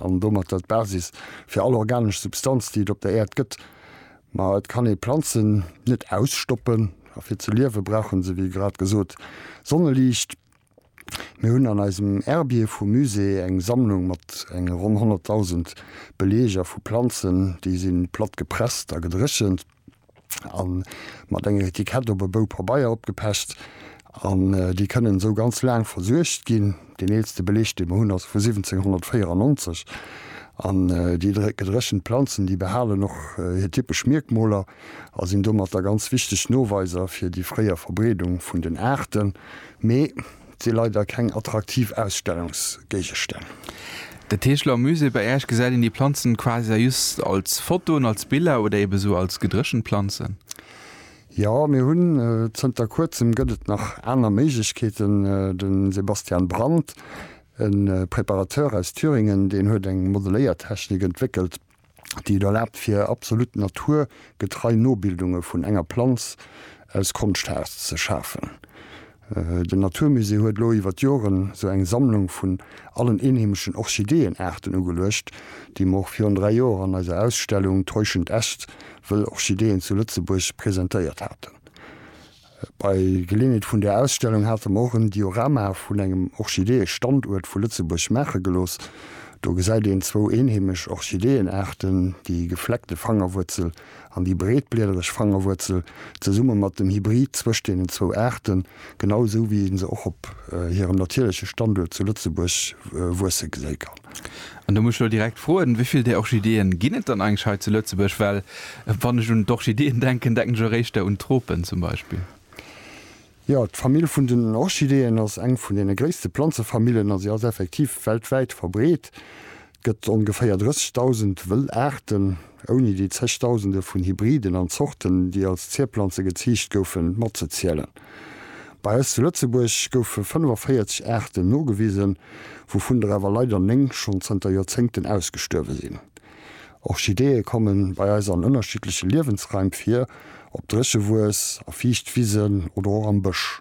an domatter d'Basis fir all organesch Substanz, déi et op der Äerd gëtt. Ma et kann ee Planzen net ausstoppen, a fir ze liewe brauche se, wéi grad gesot, Sonneliicht. Mir hunn an eisem Herbier vum Musée eng Sammlung mat enge ronn 100.000 Beleeger vu Planzen, déi si platt gepresst a gedréchent. an mat enger Etikett op e Bou Pabeier opgepecht an déi kënnen esou ganz laang versuergt ginn. Deen eelste Beleg dee mer hunn ass vu 1794 an déi gedréchent Planzen déi behalen och hir typesch Mierkmoler a sinn domatter ganz wichteg Noweiser fir déi fréier Verbreedung vun den Aarten. Mee. Et si leider keng attraktiv Ausstellungsgéigestänn. De Tegeler Musée, bei Äerch gesäit een déi Planzen quasi just als Fotoen, als Biller oder eben esou als gedréchent Planzen. Jo, mir hunn zënter kuerzem gëtt et nach aner Méiglechkeeten. De Sebastian Brandt, e Preparateur aus Thüringen, deen huet eng Modeléiertechnik entwéckelt, déi et erlaabt fir absolut Natur getrei Nobildunge vun enger Planz aus Konschtharz ze schafen. Den Naturmusée huet elo iwwer d'Joren sou eng Sammlung vun allen eenheemeschen Orchideeënaarten ugeluecht, déi mer och virun 3 Joer an eiser Ausstellung Täuschend Äst, Wëll Orchideeën zu Lëtzebuerg presentéiert haten. Bei Geleeënheet vun där Ausstellung hate mer och en Diorama vun engem Orchideeë-Standuert vu Lëtzebuerg maache gelooss. Do gesäit een zwou eenheemesch Orchideeënaarten, déi gefleckte Fangerwuerzel an déi breetbliedereg Fangerwuerzel, zesumme mat dem Hybrid zwëscht deenen zwou Aarten, genau esou wéi ee se och op hirem natierleche Standuert zu Lëtzebuerg wuesse geséi kann. An do muss ech elo direkt froen, wéi vill där Orchideeën ginn et dann eigentlech hei zu Lëtzebuerg? Well wann ech un d'Orchideeën denken, denken ech eréischter un Tropen zum Beispill. Jo, d'Famill vun den Orchideeën ass eng vun deene gréisste Planzefamillen a si ass effektiv weltwäit verbreet. Et gëtt ongeféier 30.000 wëll Aarten. ouni déi Zegdausende vun Hybriden an Zorten, déi als Zierplanze geziicht goufen, matzezielen. Bei eis zu Lëtzebuerg goufe 45 Aarten nogewisen, wouvun der awer leider néng schonn zënter Joerzéngten ausgestuerwe sinn. Orchideeë komme bei eis an ënnerschiddleche Liewensraim vir, op Dréchewues, a Fiichtwisen oder och am Bësch.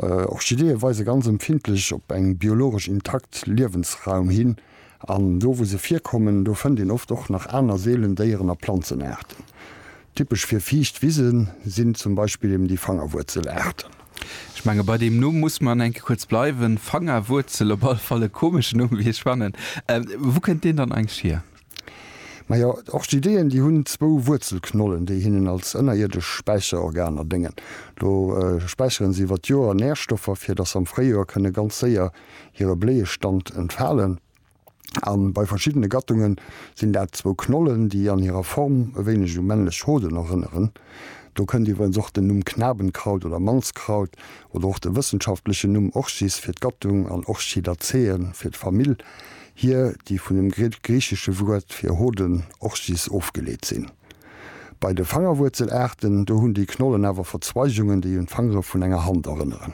Orchideeë weise ganz empfindlech op eng biologesch intakt Liewensraum hin. An do wou se virkommen, do fënnt een oft och nach aner seelen Déieren a Planzenaarten. Typesch fir fiicht Wise sinn zum Beispill eben déi Fangerwuerzelaarten. Ech menge bei deem Numm muss mer an enke kuerz bleiwen. Fangerwuerzel, op alle Fall e komeschen Numm wéi ech fannen. Wou kënnt deen dann eigentlech hier? Majo, d'Orchideeën déi hunn zwou Wuerzelknollen, déi hinnen als ënnerierdesch Späicherorganer déngen. Do späicheren se iwwer d'Joer Närstoffer, fir datt se am Fréijoer kënne ganz séier hire Bléiestand entfalen a bei verschiddene Gattungen sinn dat zwou Knollen, déi an hirer Form e wéineg u männlech Hoden erënneren. Do kënnt iwwerens och den Numm Knabenkraut oder Mannskraut oder och de wëssenschaftlechen Numm Orchis fir d'Gattung an Orchidaceae fir d'Famill hier, déi vun dem griichesche Wuert fir Hoden, Orchis, ofgeleet sinn. Bei de Fangerwuerzelaarten, do hunn déi Knollen awer Verzweigungen, déi un d'Fangere vun enger Hand erënneren.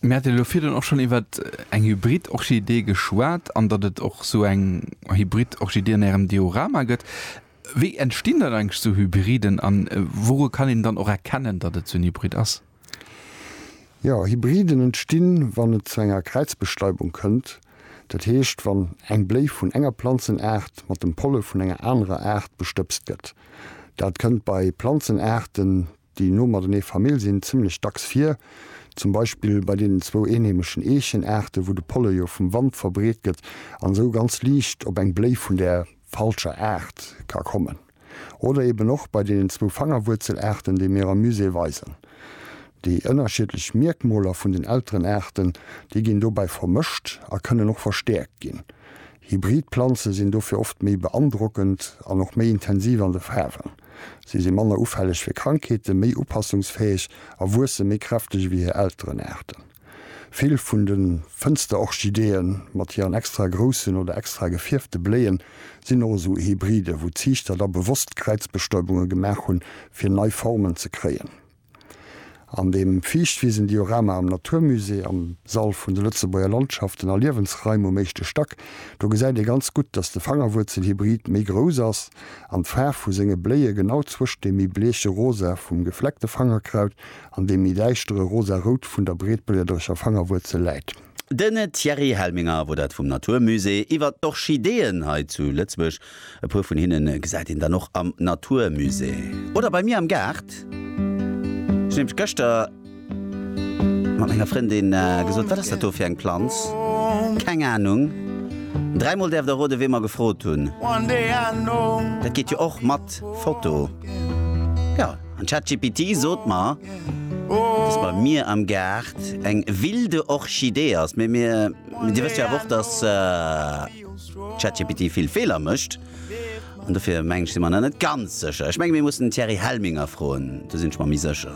Mir haten elo virdrun och schonn iwwer eng Hybrid-Orchidee geschwat an datt et och esou eng Hybrid-Orchidee an Ärem Diorama gëtt. Wéi entstinn dann eigentlech esou Hybriden an wouru kann een dann och erkennen, datt et esou en Hybrid ass? Jo, Hybriden entstinn, wann et zu enger Kräizbestäubung kënnt, dat heescht, wann eng Bléi vun enger Planzenaart mat dem Polle vun enger anerer Aart bestëbst gëtt. Dat kënnt bei Planzenaarten, Déi no matenee Famill sinn zimmlech dacks vir, zum Beispill bei deenen zwou eenheemeschen Eechenaarten, wou de Polle jo vum Wand verbreet gëtt an esou ganz liicht op eng Bléi vun där falscher Aart ka kommen. Oder eben och bei deenen zwou Fangerwuerzelaarten, déi mir am Musée weisen. Déi ënnerschiedlech Mierkmoler vun den Elterenaarten, déi ginn dobäi vermëscht a kënnen och verstäerkt ginn. Hybrid Planze sinn dofir oft méi beandrockend an och méi intensiv an de Faarwen. Si si manner ufälleg fir Krankheeten, méi upassungsfäeg a wuesse méi kräfteg ewéi hir Elterenaarten. Vill vun de Fënsterorchideeë mat hiren extra groussen oder extra gefierfte Bléien sinn och esou Hybriden, wou d'Ziichter da bewosst Kräizbestäubunge gemaach hunn, fir nei Formen ze kréien. An dem Fiichtwisen-Diorama am Natur Musée am Sall vun de Lëtzebuerger Landschaften a Liewensraim um éischte Stack, do gesäit ee ganz gutt, datt de Fangerwuerzelhybrid méi grouss ass an d'Faarf vu senge Bléie genau zwëscht dem méi bleeche Rosa vum Gefleckte Fangerkraut an dem méi däischtere Rosarout vun der Breetbléierderecher Fangerwuerzel läit. Den Thierry Helminger wor dat vum Natur Musée iwwert d'Orchideeën hei zu Lëtzebuerg. E puer vun hinnen gesäit een dann och am Natur Musée oder bei mir am Gaart. Ech nämlech gëschter mat menger Frëndin gesot, wat ass dat do fir eng Planz? Keng Ahnung. Dräi mol däerf der roden wee mer gefrot hunn. Dat geet jo och mat Foto, jo. An ChatGPT sot mer, dass bei mir am Gaart eng wilde Orchidee ass. Mee Dir wësst jo awer och, dass ChatGPT vill Feeler mécht. An dofir, mengen ech, si mer nach net ganz sécher. Ech menge mir mussen den Thierry Helminger froen, do sinn ech mer méi sécher.